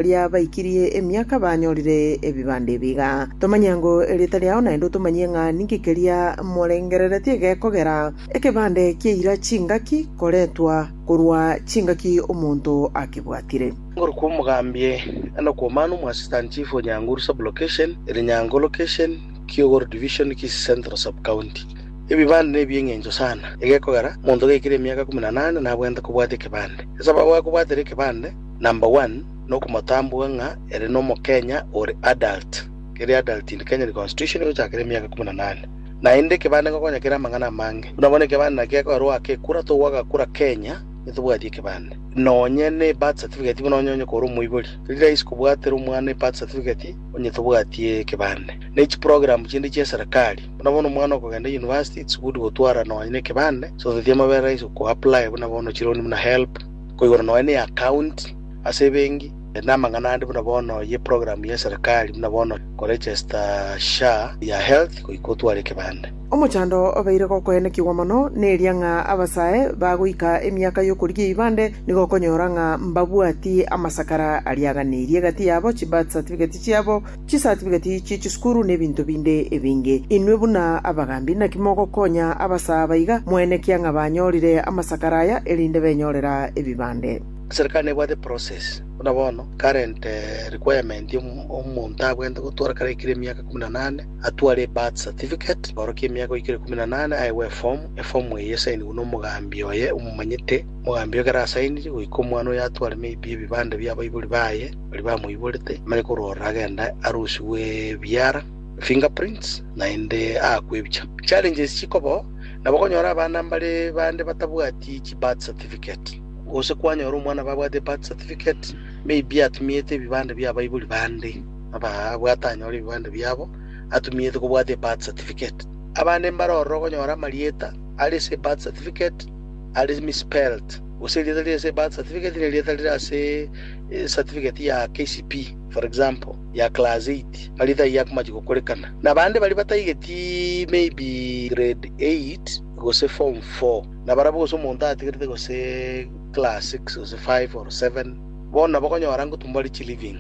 riria baikirie emiaka banyorire ebibanda ebi iga. Tomanya ng'o erieta riao naende otomanyie ng'a ninki keria morengereretie gekogera ekebande kia eira chingaki koretwa korwa chingaki omonto akebwatire. Igoro kwa omogambia na okw'omanu mwa Assistant Chief o Nyanguru Sub-Location, Elinyango Location, Kiogoro Division, Kisii Central Sub-County. Ebibande nebi eng'encho sana, egekogera, omonto gaikirie emiaka ikomi na nane nabwenerete kobwatia ekebande. Ase ababwate kobwatera ekebande, Number one, nokomotambua ng'a ere nomokenya ore adult, kere adult in Kenya constitution egochakera emiaka ikomi na nane. Naende ekebande ngokonya kere amang'ana amange. Buna bono ekebande naki gekoerwa goaka ekura, togwa agakura Kenya nitobwati ekebande. Nonye ne birth certificate buna onye onye kore omoibori, teri rahisi kobwatera omwana ebirth certificate onye tobwati ekebande. Ne echi program chinde chia eserekari, buna bono omwana okogenda university it's good gotwara nonye ne ekebande, so that amabere rahisi ko apply buna bono chironi buna help, Koigoro nonya ne account ase ebenki ere namang'ana ande buna bono ye program ye serikali buna bono ko register SHA ya health goika otware ekebande. Omochando obeire gokoenekigwa mono neria ng'a abasae bagoika emiaka y'okorigia eibande nigo okonyora ng'a mbabwati amasakara ariaganirie egati yabo, chibirth certificate chiabo, Chisatifiketi chie chisukuru nebinto binde ebinge. Inwe buna abagaambi naki mogokonya abasaaba iga? Moen ekiang'a banyorire amasakara aya erinde benyorera ebibande. Serikali nebwate process buna bono current requirement ya omonto abwente gotwara kare aikire emiaka ikomi na nane atware ebirth certificate orokia emiaka oikire ikomi na nane aewe eform eform eye esainigwe na omogaambi oye omomanyete omogaambi oye ekero asainirie goika omwana oyo atware maybe ebibande bia abaibori baye baria bamoiborete bare korora agenda arusigwe ebiara, fingerprints, naende aakwe ebicha. Challenges chikobaho nabo konyora abana mbare bande batabwati chi birth certificate, gose kwanyora omwana babwate birth certificate maybe atumiete ebibande bia abaibori bande aba abwate anyore ebibande biabo atumiete kobwate birth certificate. Abande mbare ororo okonyora amarieta are ase birth certificate are misspelled, gose erieta rire ase birth certificate nerieta rire ase ecertificate ya KCPE for example ya class eight baria taiyo akomachi gokorekana na bande baria bataigeti maybe grade eight gose form four na barabwo gose omonto atigerete gose class six gose five or seven bono nabo okonyora ngotumwa baria chiliving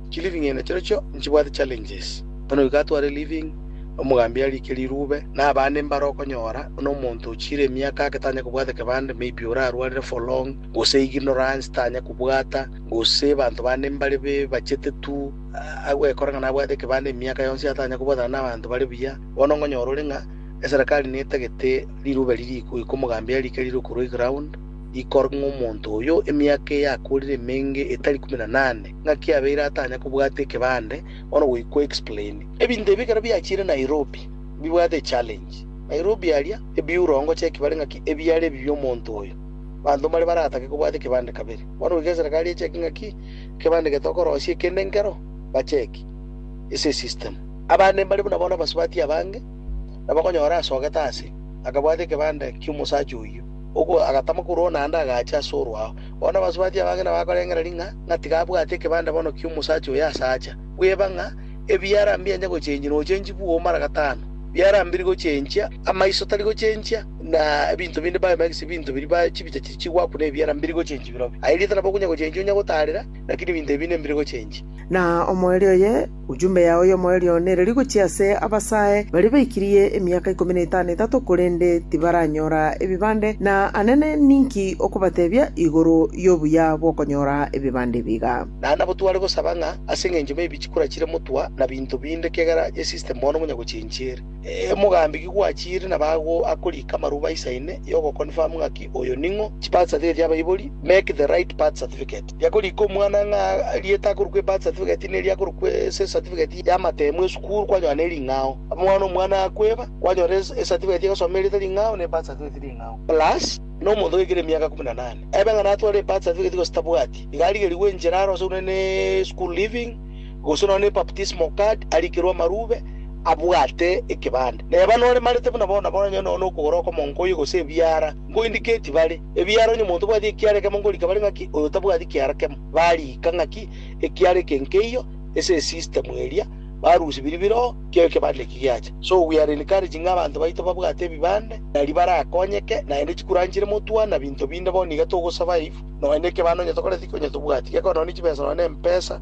chiliving ene chirochio nchibwate challenges bono iga atware living omogambi arike rirube na abande mbare okonyora buna omonto ochire emiaka ake tanya kobwata ekebande maybe orarwarire for long. gose iginora inse tanya kobwata, gose abanto bande mbare bachete tu, agwekora ng'a nabwate ekebanda emiaka yonsi atanya kobwatana nabanto bare buya, bono ngonyora ore ng'a eserekari netagete rirube riria iko iko omogambia arike rire okorwa eground, ikor ng'a omonto oyo emiaka eye akorire emenge etari ikomi na nane, ng'aki abeire atanya kobwata ekebande, bono goikwa explain. Ebinto ebi ekero biachire Nairobi bibwate echallenge. Nairobi aria ebiura ongocheki bare ng'aki ebiare ebibe omonto oyo. Abanto mbare baratake kobwata ekebande kabere. Bono goika eserekari echeki ng'aki ekebande gete okorosia ekende nkero, bacheki. Ase esystem. Abande mbare buna bono abasubati abange, nabo okonyora asogete ase, akabwata ekebande ki'omosacha oyio, ogo agatama korwa one ande agacha ase orwao. Bono abasubati abange nabakorengereria ng'a ng'a tiga abwate ekebande bono ki'omosacha oyo ase acha, bweba ng'a, Ebiarambia enye gochenchia nochenchi bwoo mara gatano, biarambiri gochenchia amaiso tari gochenchia, na ebinto binde biomo egese binto biria ba chibicha chiria chigwakuna ebiarambiri gochenchia birobio. Aye rieta nabo okonya gochenchia onya gotaarera, lakini ebinto ebi nembire gochenchia. Na omoerio oye, ujumbe yao y'omoerio one ereri gochia ase abasae baria baikirie emiaka ikomi na etano etato korende tibaranyora ebibande, na anene ninki okobatebia igoro y'obuya bw'okonyora ebibande ebiga? Naende nabo tware gosaba ng'a ase engencho maybe chikura chire motwa na binto binde ekiagera ye system bono ngonya gochenchi ere. Ee, mogambi ki gwachiire na bago akorika amarubo aisaine yo go confirm ng'aki oyo ning'o. Chi birth certificate ya abaibori, make the right birth certificate. Yakorika omwana ng'a erieta akorokwa ebirth certificate neri akorokwa ase ecertificate ya amatemo esukuru kwanyora neri ring'ao. Bono omwana akweba, kwanyora ecertificate egosoma erieta ring'ao na ebirth certificate ring'ao. Plus, na omonto ogoikera emiaka ikomi na nane ebe ng'a natware ebirth certificate gose tabwati. Iga arigerigwe enchera aro ase buna ne-school leaving, gose nonya ne-baptismal card, arikerwe amarube, abwate ekebande. Neba noremarete buna bono nabo onye nonya nokogora okomo nkoye gose ebiara, nkoindiketi bare, ebiara onye omonto obwati ekiara ekemo ngorika bare ng'aki oyo tabwati kiara kemo, barika ng'aki ekiara eke nkeiyo ase esystem eria, barusia biria bire oo kera ekebande eki giacha. So we are encouraging abanto baito babwate ebibande nario barakonyeke, naende chikura nchire motwa na binto binde bono iga togo survive nonya ne ekebande onye tokoreti ki onye tobwati, gekorwa nonya ne chibesa nonya ne empesa,